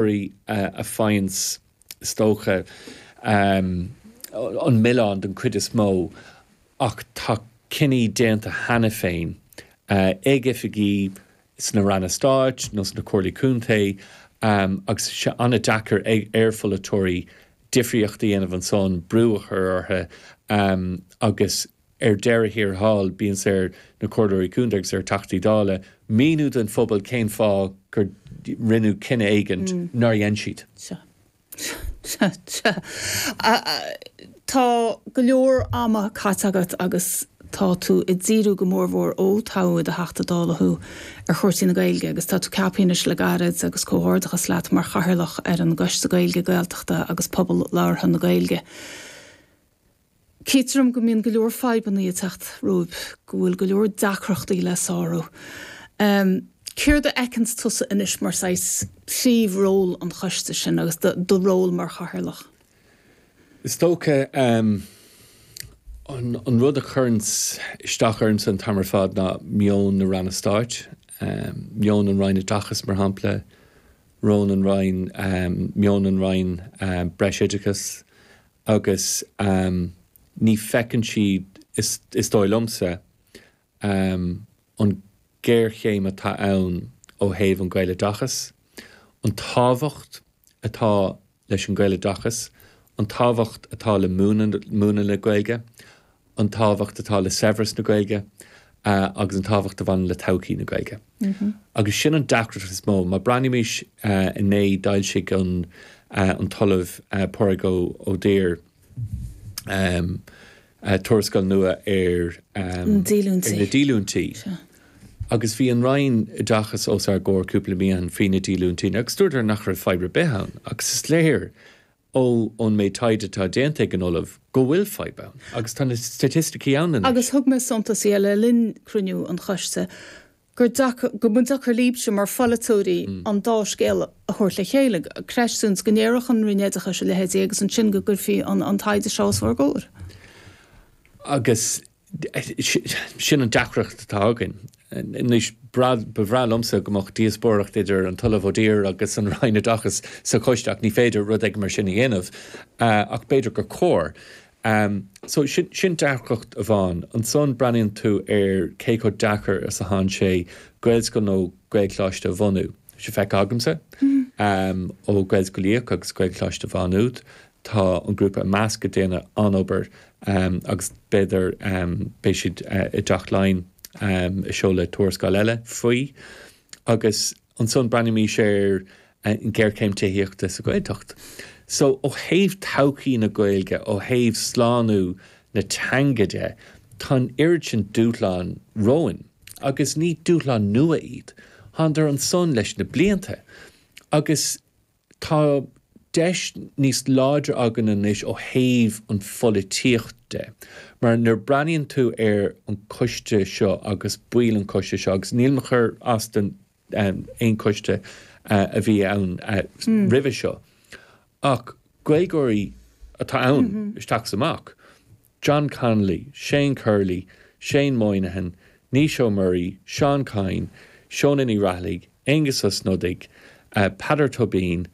Rí a faigheanns, is dócha, an milleán den chuid is mó ach tá cinní déanta cheana féin ag oifigigh sna Ranna Stáit nó sna Comhairlí Contae agus tá sé an-deacair ar pholaiteoirí difríocht a dhéanamh ansan, brú a chur orthu agus. Ar deireadh thiar thall, bíonns ar na Comhairleoirí Contae agus ar Theachtaí Dála míniú don phobal cén fáth gur rinneadh cinneadh éigin nár dhein siad. Sea. Sea. Sea. Tá go leor ama caite agat agus tá tú ag díriú go mór mhór, ó toghadh i do Theachta Dála thú, ar chúrsaí na Gaeilge agus tá tú ceaptha anois le gairid agus comhghairdeachas leat mar Chathaoirleach ar an gCoiste Gaeilge, Gaeltachta agus Pobal Labhartha na Gaeilge. Chítear dom go mbíonn go leor fadhbannaí ag teacht romhaibh, go bhfuil go leor deacrachtaí le sárú. Céard a fheiceanns tusa anois mar saghas príomh ról an choiste sin agus do do ról mar chathaoirleach? Is dócha an rud a chuireanns isteach ormsa an t-am ar fad ná meon na Ranna Stáit, meon an Roinn Oideachais mar shampla, rón an Roinn, meon an Roinn Breisoideachais Agus ní feiceann siad, is dóigh liomsa, an géarchéim atá ann ó thaobh an Ghaeloideachas, an tábhacht atá leis an Ghaeloideachas, an tábhacht atá le múineadh na Gaeilge an tábhacht atá le saibhreas na Gaeilge agus an tábhacht a bhaineann le todhchaí na Gaeilge. Agus sin an deacracht is mó. Má breathnaímis inné, d'fhoilsigh an an tOllamh Pádraig Ó Duibhir tuarascáil nua ar na díolúintí agus bhí an Roinn Oideachais os ár gcomhair cúpla mí ó shin faoi na díolúintí agus dúradar nach raibh fadhb ar bith ann agus is léir ó ón méid taighde atá déanta ag an Ollamh go bhfuil fadhb ann, agus tá na staitisticí ann anois. Agus thug mé suntas dhe le linn cruinniú an Choiste gur deacair, go mba deacair líbse mar pholaiteoirí an dá scéal a thabhairt le chéile, creistiúint go ndéarfadh an Roinn Oideachais a leithéidí agus ansin go gcuirfí an taighde seo os bhur gcomhair. Agus Sin an deacracht atá againn. Anois, ba bhreá liomsa go mbeadh díospóireacht idir an tOllamh Ó Duibhir agus an Roinn Oideachais sa choiste ach ní féidir rud éigin mar sin a dhéanamh, ach b'fhéidir gur chóir. So, sin deacracht amháin. Ansan breathnaíonn tú ar cé chomh deacair is atánn sé Gaelscoil nó Gaelcholáiste a bhunú. Bhí sé feicthe agamsa ó Gaelscoil Uí Fhiaich agus Gaelcholáiste Mhá Nuad Tá an grúpa i measc ag déanamh an obair agus b'fhéidir beidh siad i dTeach Laighean ag seoladh tuarascáil eile faoi. Agus ansan breathnaímid ar an ghéarchéim tithíochta sa Ghaeltacht. So, ó thaobh todhchaí na Gaeilge, ó thaobh slánú na teanga de, tá an oiread sin dúshlán romhainn. Agus ní dúshlán nua iad. Tánadar ansan leis na blianta. Agus Tá deis níos láidir againn anois ó thaobh an pholaitíochta, mar nuair a breathnaíonn tú ar an coiste seo agus baill an choiste seo, agus nílim ag cur as do aon choiste a bhí ann roimhe seo, ach Gaeilgeoirí atá ann isteach is amach. John Connolly, Shane Curley, Shane Moynihan, Naoise Ó Muirí, Seán Kyne, Shónagh Ní Raghallaigh, Aengus Ó Snodaigh, Peadar Tóibín,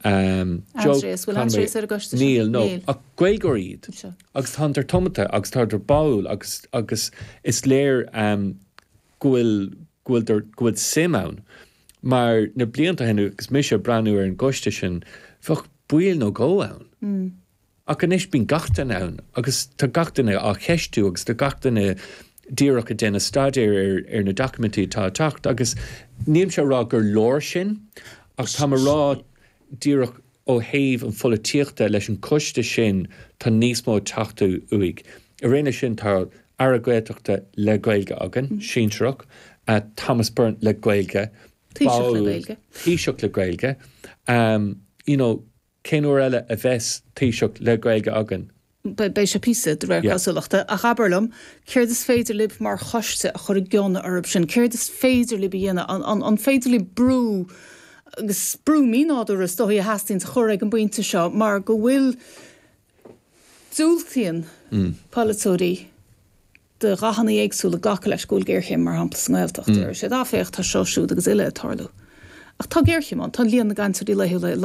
Joe Conway, níl, no, ach Gaeilgeoirí iad agus tánadar tiomanta agus tánadar báúil agus agus is léir go bhfuil go bhfuil go bhfuil suim ann mar na blianta ó shin agus mise ag breathnú ar an gcoiste sin, bheadh ball nó dhó ann. Ach anois bíonn gach duine ann agus tá gach duine á cheistiú agus tá gach duine díreach ag déanamh staidéir ar na doiciméidí atá ag teacht agus nílimse ag rá gur leor sin ach táim ag rá díreach ó thaobh an pholaitíochta leis an choiste sin tá níos mó ag teacht uaidh. Araon le sin tá Aire Gaeltachta le Gaeilge againn, sinsearach, Thomas Byrne le Gaeilge, ball, Taoiseach le Gaeilge, you know, Cén uair eile a bheidh Taoiseach le Gaeilge againn? Beidh sé píosa, de réir cosúlachta. Ach abair liom, céard is féidir libh mar choiste a chur i gcion orthu sin? Céard is féidir libh a dhéanamh? An féidir libh brú, agus brú mínádúrtha is dóigh a theastaíonns a chur ag an bpointe seo mar go bhfuil, diúltaíonn polaiteoirí de dhathanna éagsúla glacadh leis go bhfuil géarchéim mar shampla sa nGaeltacht. Deir siad, ah féach, tá seo, siúd agus uile ag tarlú. Ach tá géarchéim ann, tá líon na gcainteoirí laethúla ag